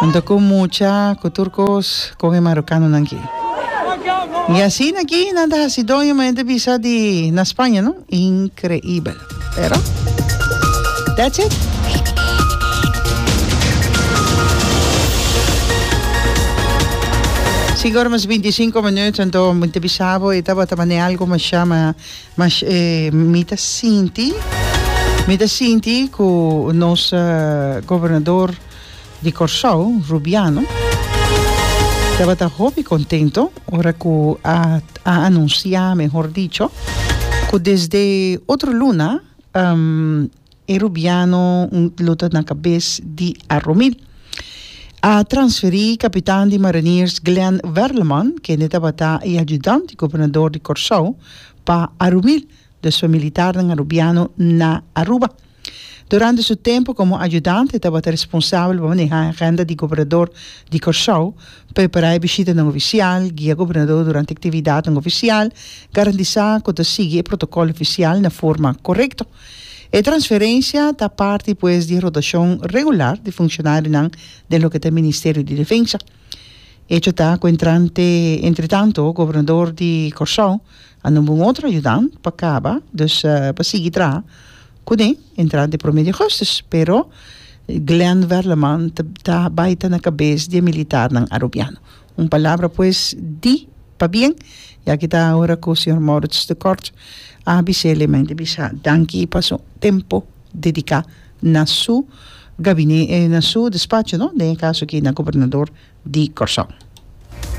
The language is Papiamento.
Anto cu mucha cu tur cos con e marocanonan ki. Y asina ki nan ta haci doño men te bisa di na Spaña no. Increibel. Pero that's it. Cinco ora mas binti cinco minuut anto mi te bisa bo e tabata mane algo masha ma mas eh, mi ta sinti mi ta sinti cu nos gobernador di Kòrsou, Rubiano, tabata hopi kontento ora ku a a anunsiá, mehor dicho, ku desde otro luna e Rubiano lo ta na kabes di Aromil. A transferí kapitan di Mariniers Glen Werleman, kende tabata e ayudant di Gobernador di Kòrsou, pa Aromil Despues militarnan a rubiano na Aruba. Durante su tempu komo ayudante e tabata responsabel pa manehá e agenda di gobernador di Kòrsou, prepará e bishitanan ofisial, guia gobernador durante aktividatnan ofisial, garantisá ku ta sigui e protokòl ofisial na forma korekto. E transferensia ta parti pues di e rotashon regular di funshonarionan den loke ta e Ministerio di Defensa. Echo ta ku entretanto gobernador di Kòrsou, A nomba un otro ayudant pa caba, dus pa sigui traha cune entrada di prome di augustus. Pero Glenn Werleman ta bay ta na cabes di e militarnan Arubiano. Un palabra pues di pabien, ya ki ta ora cu señor Maurits de Kort a bisa el, e mende bisa danki pa su tempo dedica na su gabine, na su despacho no, den e caso aki na gobernador di Corsou.